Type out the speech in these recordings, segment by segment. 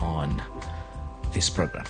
on this program.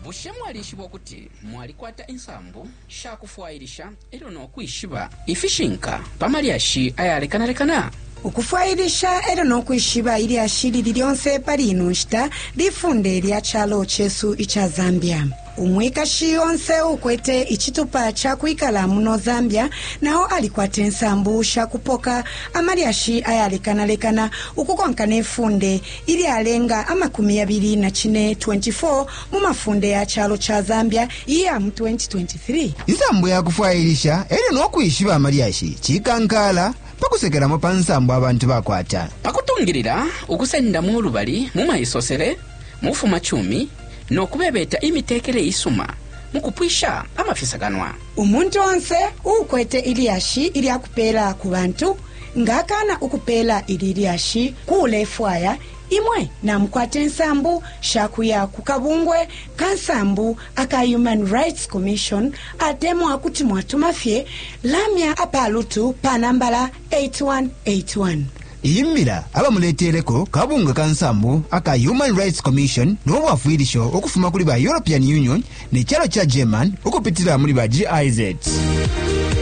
bushe mwalishiba ukuti mwalikwata insambu sha kufwailisha elyo no kwishiba ifishinka pa malyashi ayalekanalekana ukufwailisha elyo nokwishiba ilyashi lili lyonse pali ino nshita lifunde lya calo cesu ica zambia Umwikashi onse uukwete icitupa ca kwikala muno Zambia na o alikwata insambu sha kupoka amalyashi ayalekanalekana ukukonka ne funde ilyalenga amakumi yabili na cine, 24 mu mafunde ya calo ca Zambia iya mu 2023. Insambu ya kufwailisha e lyo no kwishiba amalyashi cikankaala pa kusekelamo pa nsambu abantu bakwata. Pa kutungilila ukusendamo ulubali mu maisosele, mu bufumacumi, no kubebeta imitekele isuma mu kupwisha amafisakanwa. Umuntu onse uukwete ilyashi ilya kupeela ku bantu nga akaana ukupeela ili lyashi ku ulefwaya, imwe namukwata insambu sha kuya ku kabungwe ka nsambu aka Human Rights Commission atemwa kuti mwatuma fye lamya a pa lutu pa nambala 8181. Iyi mbila abamuleteleko kabunga ka nsambu aka Human Rights Commission no bwafwilisho ukufuma kuli ba European Union ne calo ca German ukupitila muli ba GIZ.